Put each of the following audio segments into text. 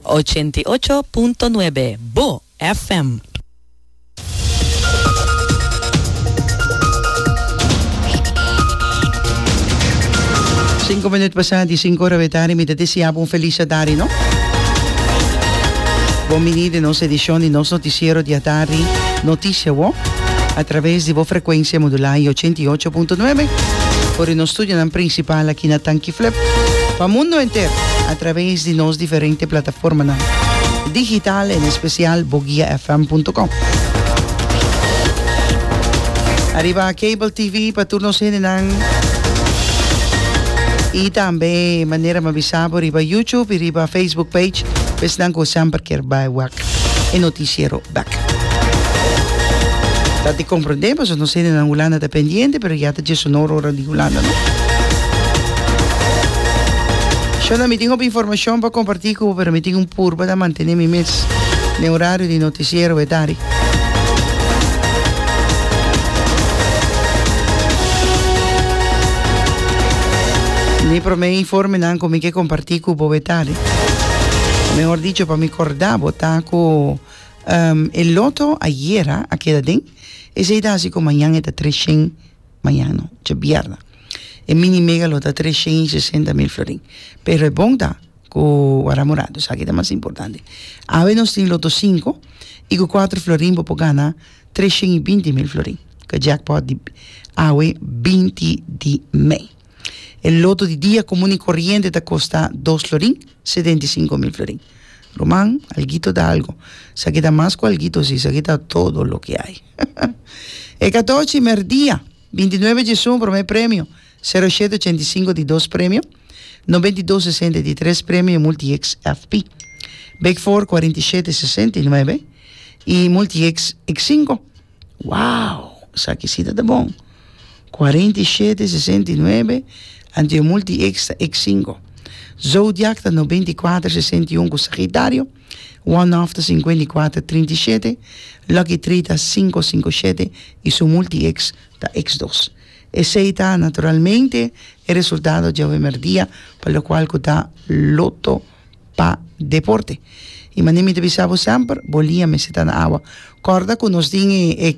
Ochenta i ocho punto nuebe, bo FM. Sinku minut pasa di sinku ora betari mi ta deseabo un felis atari no. Bon bini den nos edishon di nos notisiero di atari Noticia Wo a traves di bo frekuensia modula i ochenta i ocho punto nuebe. For di nos studionan prinsipal aki na Tanki. Flip pa mundo enter a traves di nos diferente plataformanan digital en especial boguiafm.com. Ariba cable TV pa tur nos hendenan y tambe manera ma bisa bo riba YouTube y riba Facebook page, pues nan cu semper kier bai wak e noticiero. Bek. Ta di comprende paso nos hende nan Hulanda ta pendiente pero ya ta diesunor ora di Hulanda no. Shonda mi tin hopi informacion pa comparti cu bo pero mi tin un purba ta mantene mi mes den horario di noticiero e dari. Mi prome informe nan cu mi ke comparti cu bo e dari. Mehor dicho, pa mi corda bo ta cu um, e loto ayera a keda den. Esey ta haci cu mañan e ta tres shen, mañan no, djabierna. E mini mega lo ta tres shen y sesenta mil florin. Pero e bon ta cu wara morado, esaki ta mas importante. Awe nos tin loto cinco y cu cuatro florin bo por gana tres shen y binti mil florin. Cu e jackpot di awe binti di mei. E loto di dia komun i koriente ta kosta dos florin, setenta i sinku mil florin. Ruman, alguito ta algu. Esaki ta mas ku alguito si, esaki ta todo loke hay. E katochi merdia, binti nuebe djesun, promé premio, sero shete ochenta i sinku di dos premio, nobenta i dos sesenta di tres premio i multieks FP. Big Four kuarenta i shete sesenta i nuebe i multieks ik sinku. Wow! Esaki si ta ta bon. Cuarenta y siete, sesenta y nuebe, anto yo multi X ta X cinco. Zodiac ta noventa y cuatro, sesenta y un cu Sagitario. One off ta cincuenta y cuatro, trinta y siete. Lucky three ta cinco, cinco siete y su multi X ta X dos. Esey ta naturalmente e resultado di awe merdia pa locual cu ta Lotto. pa deporte. I manera mi ta bisa bo semper, bo lia mester ta na awa. Kòrda ku nos tin e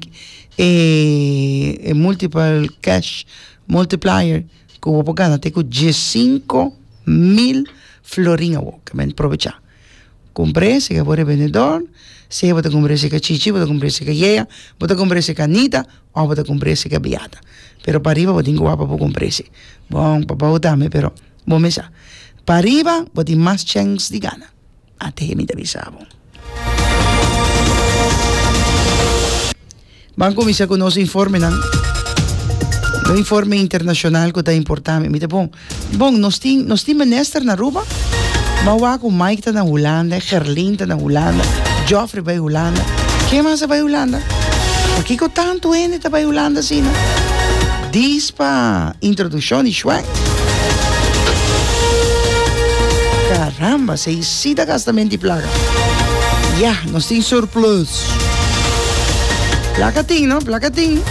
e multiple cash multiplier ku bo por gana te ku diesinko mil florin awo. Kèmen provecha. Kumpr'é si ke bo rebendedor, si bo ta kumpr'é si ke chichi, bo ta kumpr'é si ke yaya, bo ta kumpr'é si ke anita òf bo ta kumpr'é si ke beata. Pero pariba bo tin ku wak pa bo kumpr'é si. Bon, papá bo ta mi pero Bo mesa pariba bo tin mas chèns di gana, at'e mi ta bisa bo. Ban kuminsá ku nos informenan, un informe internashonal ku ta importante. Mi ta pon, bon, nos tin nos tin minister na Aruba? Ban wak ku Mike ta na Hulanda, Gerlin ta na Hulanda, Jofrey bai Hulanda, ke mas a bai Hulanda? Pakiko tantu hende ta bai Hulanda asina? Dis pa introduccion di Schwenk. Caramba, se i si ta gasta menti placa. Ya, nos tin surplus. Placa tin, no? Placa tin.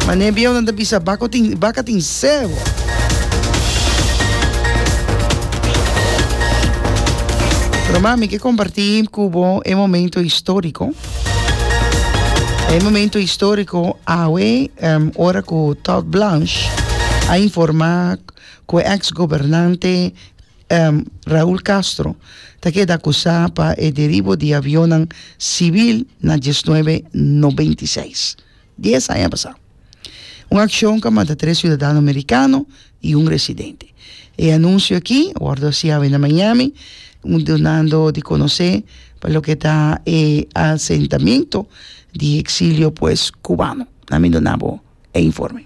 Ma ne bieu nan ta bisa baco tin, baca tin sebo. Pero mami, ke comparti cu bo e momento historico. E momento histórico awe, um, ora cu Todd Blanche a informa cu e ex gobernante, um, Raul Castro ta keda acusa pa e deribo di avionnan cibil na diesnuebe no beintiseis. Dies aña pasá, un akshon ka mata tres siudadano merikano i un residente. E anunsio akí a wòrdu hasi awe na Miami, donando di konosé pa loke ta e asentamentu di eksilio pues kubano. Na mi duna bo e informe.